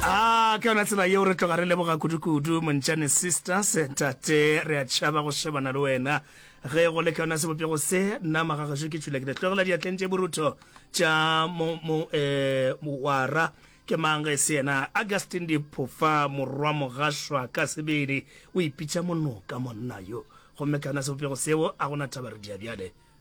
Ah, ke yona tsela yeo re tloga re leboga kudu-kudu montšane sisters tate re a tšhaba go shebana le wena ge go le ke yona sebopego se nna magagašo ke tšhula ke letlogela diatleng tše borutho tša eh, moara ke mang ge se yena augustin diphofa morwa mogašwa ka sebele o ipitša monoka monna yo gomme ka yona sebopego seo a gona taba re diabjale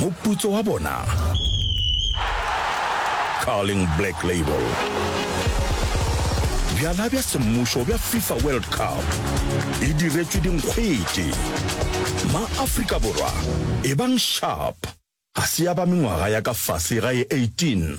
Moputso wa bona, Carling Black Label. Bjala bja semmušo bja FIFA World Cup e diretšwe dinkgwete. Ma-Afrika Borwa, ebang sharp! Ga se ya ba mengwaga ya ka fase ga e 18,